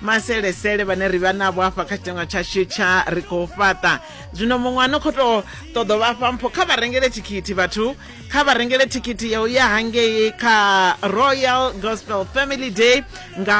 maselesele vhane ri vha navho hafha kha tshitenwa tshashu tsha ri khou fhaṱa zwino muṅwe a no khou tou ṱoḓo vha fha mpho kha vha rengele thikhithi vhathu kha vha rengele thikhithi ya u ya hangei kha royal gospel family day nga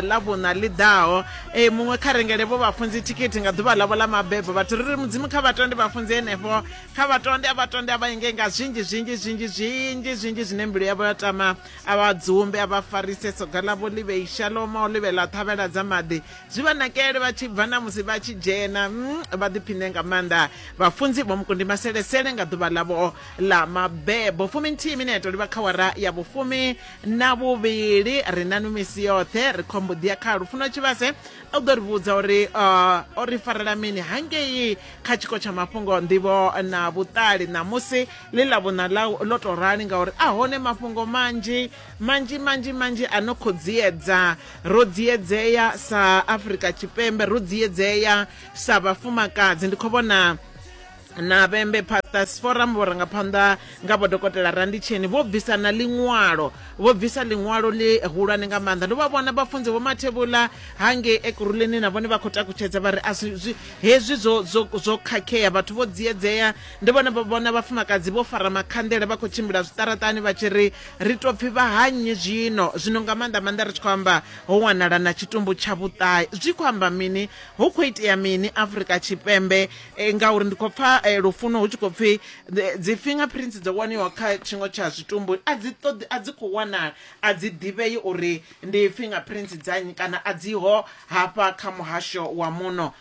ḽavhuṋa ḽi ḓaho e muṅwe kha rengele vho vhafunzi thikhithi nga ḓuvha ḽavho ḽa mabebo vhathu ri ri mudzimu kha vhatonde vhafunzi henefho kha vhatonde a vhatonde a vha inge nga zwinzhi zwinzhi zwinzhi zwinzhi zwinzhi zwine mbilu yavho ya tama a vha dzumbe a vha farise soga ḽavho ḽi vhei shaloma o ḽivhela thavhela dza maḓi zwi vha nakele vha tshi bva na musi vha tshi dzhena mm, vha ḓiphine nga maanḓa vhafunzi vho mukundi maselesele nga ḓuvha ḽavho ḽa mabebo fumi nthihi mineto ḽi vha kha wara ya vhufumi na vhuvhili ri na nwi misi yoṱhe ri khombo ḓi ya kha lufuno tshivhase u ḓo ri vhudza uri uh, o ri farela mini hangei kha tshiko tsha mafhungo nḓivho na vhuṱali ṋamusi ḽi ḽa vhuṋa ḽa ḽo tou rali ngauri a hone mafhungo manzhi manzhi manzhi manzhi a no khou dziedza ro dziedzea sa afrika tshipembe ro dziedzea sa vhafumakadzi ndi khou vhona na vhembe pastors forum vhurangaphanḓa nga vho dokotela randitsheni vho bvisa na ḽiṅwalo vho bvisa ḽiṅwalo ḽi hulwane nga maanḓa ndo vha vhona vhafunzi vho mathevhula hange ekuruleni na vhone vha khou takutshedza vha ri a hezwi zwo khakhea vhathu vho dziedzea Ndi vhone vho vhona vhafumakadzi vho fara makhanḓele vha khou tshimbila zwiṱaraṱani vha tshi ri, Ri tou pfi vha ha nnyi zwino? Zwino nga maanḓa maanḓa ri tshi khou amba ho wanala na tshitumbu tsha vhuṱae. Zwi khou amba mini? Hu khou itea mini Afrika Tshipembe? Ngauri ndi khou pfa Lufuno hu tshi khou pfi dzi finger prints dzo waniwa kha tshiṅwe tsha zwitumbu a dzi ṱoḓi, a dzi khou wanala, a dzi ḓivhei uri ndi finger prints dza nnyi kana a dzi ho hafha kha muhasho wa muno.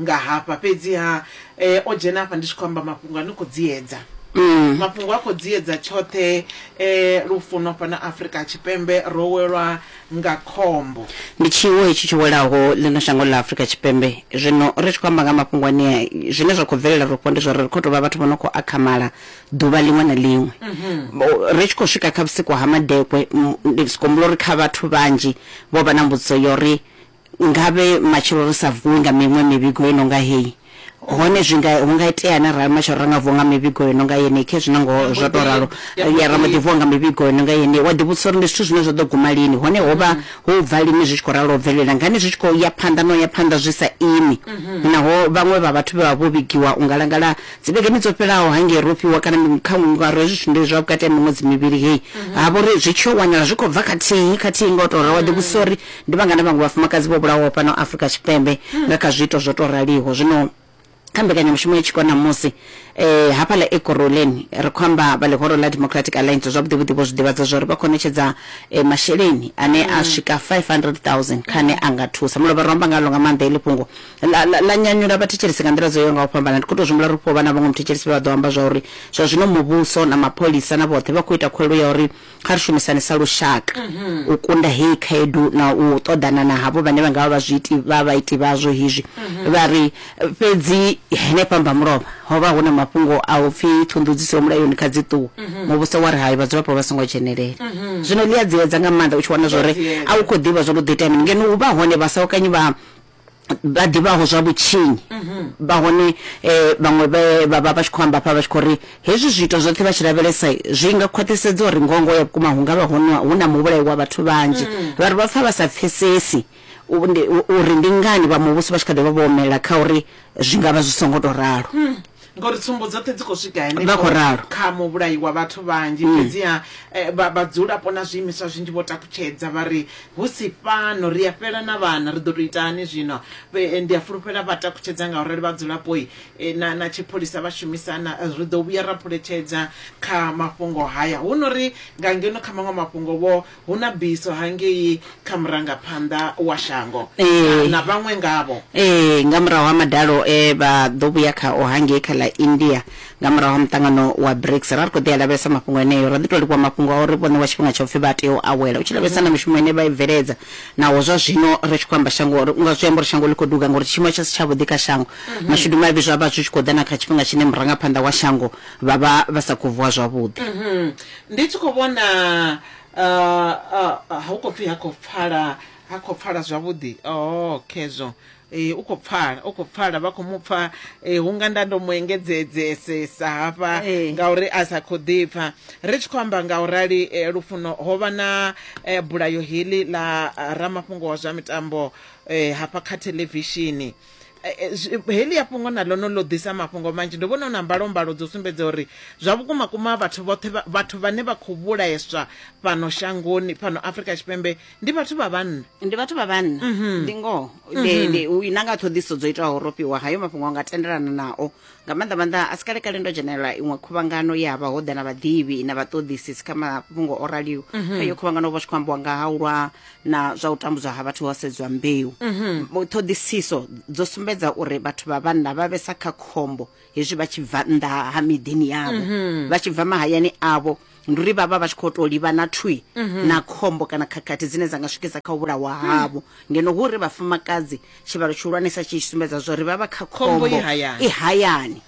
nga hafha fhedziha eh, o dzhena hafha ndi tshi khou amba mafhungo a ni khou dziedza mafhungo a khou dziedza tshoṱhe eh, lufuno fhano afrika tshipembe ro welwa nga khombo ndi tshiwo hetshi tsho welaho ḽino shango ḽa afurika tshipembe zwino ri tshi khou amba nga mafhungo anea zwine zwa khou bvelela rofho ndi zwauri ri khou tou vha vhathu vho no khou akhamala ḓuvha ḽiṅwe na ḽiṅwe Bo- ri tshi khou swika kha vhusiku ha madekwe m- ndi sikombula uri kha vhathu vhanzhi vho vha na mbudziso ya uri Ngavhe matshelo ri sa vuwi nga miṅwe mivhigo i no nga heyi. Hone zwi nga, hu nga iteani arali matshelo ra nga vuwa nga mivhigo i no nga yeneyi? Khezwi na ngoho zwo tou ralo. Ya, ra mbo ḓi vuwa nga mivhigo i no nga yeneyi. Wa ḓivhudzisa uri ndi zwithu zwine zwa ḓo guma lini, hone ho vha hu u bva lini zwi tshi khou ralo u bvelela ngani zwi tshi khou ya phanḓa na u ya phanḓa zwi sa imi. Naho vhaṅwe vha vhathu vhe vha vha vho vhigiwa u ngalangala dzivhegeni dzo fhelaho hangei Rofi wa kana miṅwe kha ngaro, hezwi zwithu ndi zwa vhukati ha miṅwedzi mivhili heyi, ha vha uri zwi tshi yo wanala zwi khou bva khathihi khathihi nga u tou ralo. Wa ḓivhudzisa uri Ndi vhangana vhaṅwe vhafumakadzi vho vhulawaho fhano Afrika Tshipembe nga kha zwiito zwo tou raliho zwino? Kha mbekanyamushumo ya tshiko ṋamusi, hafhaḽa Ekurhuleni, ri khou amba vha Ḽihoro ḽa Democratic Alliance zwavhuḓivhuḓi vho zwi ḓivhadza zwa uri vha khou ṋetshedza masheleni ane a swika 500,000 kha ane a nga thusa. Mulovha ro amba ngaḽo nga maanḓa heḽi fhungo. Ḽa nyanyula vhathetshelesi nga nḓila dzo yaho nga u fhambana. Ndi khou tou zwi humbula uri hu khou vha na vhaṅwe muthetshelesi vhe vha ḓo amba zwa uri zwa zwino muvhuso na mapholisa na vhoṱhe vha khou ita khuwelelo ya uri kha ri shumisane sa lushaka u kunda heyi khaedu na u ṱoḓana na havho vhane vha nga vha vha zwiiti vha vhaiti vhazwo hezwi vha ri fhedzi henefha mbamulovha ho vha hu na mafhungo a u pfi ṱhunḓudziso ya mulayoni kha dzi ṱuwe muvhuso wa ri hai vhadzulapo vha songo dzhenelela zwino ḽi a dziedza nga maanḓa u tshi wana zwori a u khou ḓivha zwo lu ḓo itea mini ngeno hu vha hone vhasahokanyi vha vha ḓivhaho zwa vhutshinyi vha hone um vhaṅwe vha vha vha tshi khou amba fha vha tshi khou ri hezwi zwiito zwoṱhe vha tshi lavhelesa zwi nga khwaṱhisedza uri ngongo ya vhukuma hu nga vha hu na muvhulayi wa vhathu vhanzhi vha ri vha pfa vha sa pfesesi uri ndi ngani vha muvhuso vha tshi kha ḓi vha vho omelela kha uri zwi nga vha zwi songo tou ralo Ngori tsumbo dzoṱhe dzi khou swika henefho kha muvhulayi wa vhathu vhanzhi, mm. fhedziha eh, vhadzulapo na zwiimiswa zwinzhi vho takutshedza vha ri hu si fhano ri a fhela na vhana ri ḓo tou ita hani zwino. Eh, ndi a fulufhela vha takutshedza nga urali vhadzulapo eh, na, na tshipholisa vha shumisana ri ḓo vhuya ra phuletshedza kha mafhungo haya. Hu no ri nga ngeno kha maṅwe mafhungo vho hu na biso hangei kha murangaphanḓa wa shango ee. na vhaṅwe ngavho. Ee, nga murahu ha madalo e vha ḓo vhuya khao hangei kha ḽa India nga murahu ha muṱangano wa BRICS, ra ri khou ḓi a lavhelesa mafhungo eneo. Ro ḓi tou livhuwa mafhungo a uri vho ṋewa tshifhinga tsha u pfi vha tea u awela u tshi lavhelesa na mishumo ine vha i bveledza naho zwa zwino ri tshi khou amba shango ri unga zwi amba uri shango ḽi khou duga ngauri tshiimo tsha si tshavhuḓi kha shango. Mashudu mavhi zwa vha zwi tshi khou ḓa na kha tshifhinga tshine murangaphanḓa wa shango vha vha vha sa khou vuwa zwavhuḓi. Ndi tshi khou vhona hu khou pfhi ha khou pfala ha khou pfala zwavhuḓi oh khezwo um u khou pfala u khou pfala vha khou mu pfa um hunga nda ndo mu engedzedzesesa hafha ngauri a sa khou ḓipfa ri tshi khou amba nga u rali lufuno ho vha na bulayo heḽi ḽa ramafhungo wa zwa mitambo um hafha kha theḽevishini Eh, eh, heḽi ya fhungo na ḽono ḽo ḓisa mafhungo manzhi ndo vhona hu na mbalombalo dzo sumbedza uri zwa vhukuma kuma vhathu vhoṱhe vhathu vhane vha khou vhulaeswa fhano shangoni fhano afrika tshipembe ndi vhathu vha vhanna ndi vhathu vha vhanna mhm. ndi ngoho mhm. na nga ṱhoḓiso dzo itaho ro fhiwa hayo mafhungo a nga tendelana nao nga maanḓa maanḓa a si kalekale ndo dzhenelela iṅwe khuvhangano ye havha ho ḓa na vhaḓivhi na vhaṱoḓisisi kha mafhungo o raliho kha iyo khuvhangano ho vha tshi khou ambiwa nga ha u lwa na zwa u tambudzwa ha vhathu ho sedzwa mbeu Mo- ṱhoḓisiso dzo sumbedza uri vhathu vha vhanna vha vhesa kha khombo hezwi vha tshi bva nnḓa ha miḓini yavho vha tshi bva mahayani avho ndi uri vha vha vha tshi khou tou livhana thwi na khombo kana khakhathi dzine dza nga swikisa kha u vhulawa havho ngeno hu uri vhafumakadzi tshivhalo tshihulwanesa tshi tshi sumbedza zwa uri vha vha kha Khombo khombo i hayani. i hayani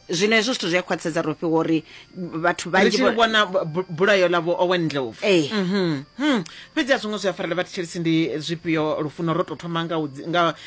zwino hezwo zwithu zwi a khwaṱhisedza ro fhiwa uri vhathu ri vhanzhi tshi vho- vhona bu- bu- bulayo ḽa vho owen ndlovu Ee. Mhm. Hmm. fhedzi a zwo ngo zwi a farela vhathetshelisi ndi zwifhio lufuno ro tou thoma nga u dzi- nga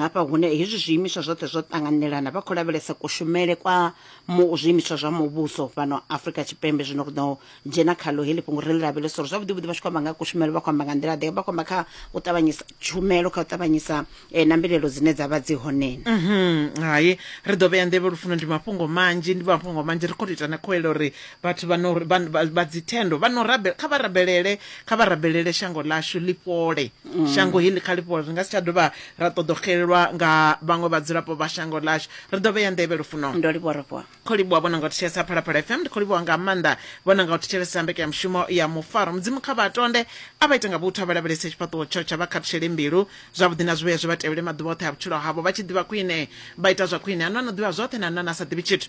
Hafha hune hezwi zwiimiswa zwoṱhe zwo ṱanganelana vha khou lavhelesa kushumele kwa mu zwiimiswa zwa muvhuso fhano Afrika Tshipembe zwino ri ḓo dzhena khaḽo heḽi fhungo ri ḽi lavhelesa uri zwavhuḓi vhuḓi vha tshi khou amba nga kushumele vha khou amba nga nḓila ḓe vha khou amba kha u ṱavhanyisa tshumelo kha u ṱavhanyisa eh, na mbilelo dzine dza vha dzi honeni Mhm, hai ri ḓo vhea nḓevhe lufuno ndi mafhungo manzhi ndi mafhungo manzhi ri khou tou ita na khoelo uri vhathu vha no- vha- vha- vha dzithendo vha no rabe- kha vha rabelele kha vha rabelele shango ḽashu ḽi fhole Mm. shango heḽi kha lifholo ri nga si tsha dovha ra ṱoḓo xelelwa nga vhaṅwe vhadzulapo vha shango ḽashu ri ḓo vheya nḓevhe lufuno ndo livhuwa rofhiwa kho livhuwa vhona nga u thetshelesa phalaphala fm ndi kho livhuwa nga maanḓa vhona nga u thetshelesa mbekanyamushumo ya mufaro mudzimu kha vha tonde a vha ita nga vhuthu a vha lavhelese tshifhaṱuwo tsho tsha vha khathutshele mbilu zwavhuḓi na zwivhuya zwi vha tevhele maḓuvha oṱhe a vhutshilo havho vha tshi ḓivha khwine vha ita zwa khwine a no no ḓivha zwoṱhe na nane a sa ḓivhi tshithu